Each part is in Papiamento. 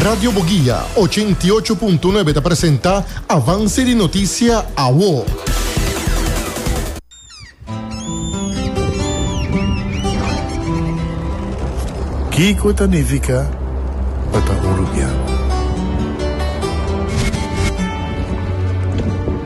Radio Boguia ochenta i ocho punto nuebe ta presenta Avance di Noticia Awo. Kiko ta nifica pa ta un rubian?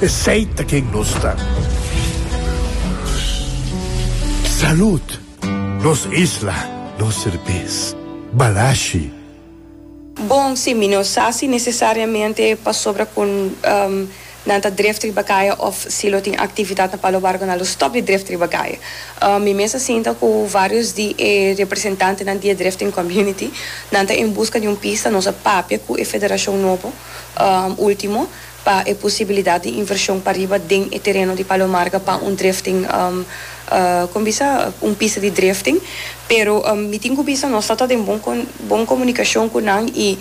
Esey ta ken nos ta. Salud! Nos isla, nos serbes. Balashi. Bon, si mi no sa si necesariamente pasobra cu nan ta dref riba caye of si lo tin actividad na Palo Barco nan lo stop di dref riba caye. Mi mes a sinta cu varios di e representantenan di e drifting community. Nan ta en busca di un pista, nos a papia cu e federacion nobo ultimo. pa e posibilidat di invershon pariba den e tereno di Palo Marga pa un drifting, kon bisa, un pista di drifting. Pero mi tin ku bisa nos ta ta den bon bon komunikashon ku nan i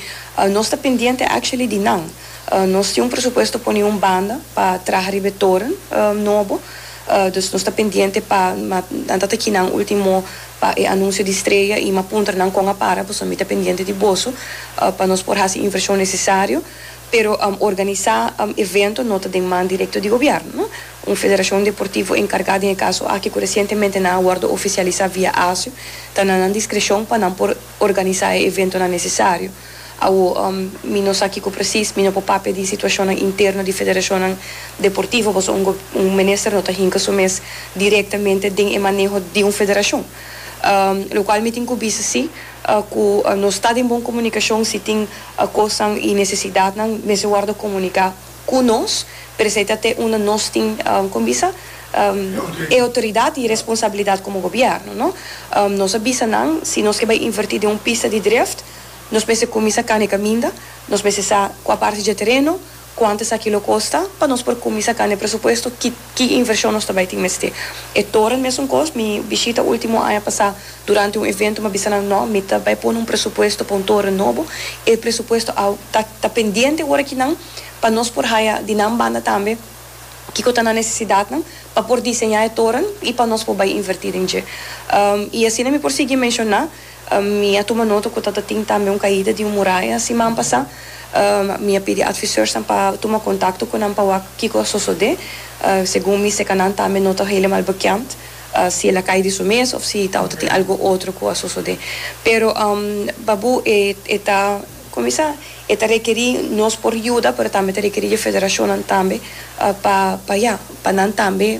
nos ta pendiente actually di nan. Nos tin un presupuesto pone un banda pa traha riba e toren nobo, dus nos ta pendiente pa nan ta ta ki nan ultimo pa e anunsio di streya i m'a puntra nan kon a para pasobra mi ta pendiente di boso pa nos por hasi invershon nesesario Pero organisá evento no ta den man direkto di gobièrnu. Un federashon deportivo enkargá den e kaso aki ku resientemente nan a wòrdu ofisialisá via ASU ta na nan diskreshon pa nan por organisá e eventonan nesesario. Awo mi no sa kiko presis, mi no por papia di situashonnan interno di federashonnan deportivo pasobra un un minister no ta hinka su mes direktamente den e maneho di un federashon. Lokual mi tin ku bisa si. Ku nos ta den bon komunikashon, si tin kosnan i nesesidatnan, mester wòrdu komuniká ku nos. Pero esei ta te unda nos tin, kon mi bisa? e outoridat i e responsabilidat komo gobièrnu, no? Nos a bisa nan, si nos ke bai invertí den un pista di drift, nos mester kuminsá kana e kaminda, nos mester sa kua parti dje tereno, Cuanto esaki lo costa? Pa nos por cuminsa can e presupuesto ki ki inversion nos ta bay tin mester. E toren mesun cos. Mi bishita ultimo aña pasa durante un evento mi a bisa nan no mi ta bay pone un presupuesto pa un toren nobo. E presupuesto a ta ta pendiente ora ki nan pa nos por haya di nan banda tambe kico ta nan necesidadnan pa por diseña e toren y pa nos por bay inverti den dje. Y asina mi por sigui menciona. Mi a tuma nota ku tabatin tambe un kaida di un muraya siman pasá. Mi a pidi adviseursnan pa tuma kontakto ku nan pa wak kiko a sosodé. Segun mi seka nan tambe no ta helemal bekend si el a kai di su mes òf si tabata tin algu otro ku a sosodé. Pero Babu e e ta kuminsá e ta rekerí nos por yuda pero tambe ta rekerí dje federashonnan tambe pa pa ya pa nan tambe.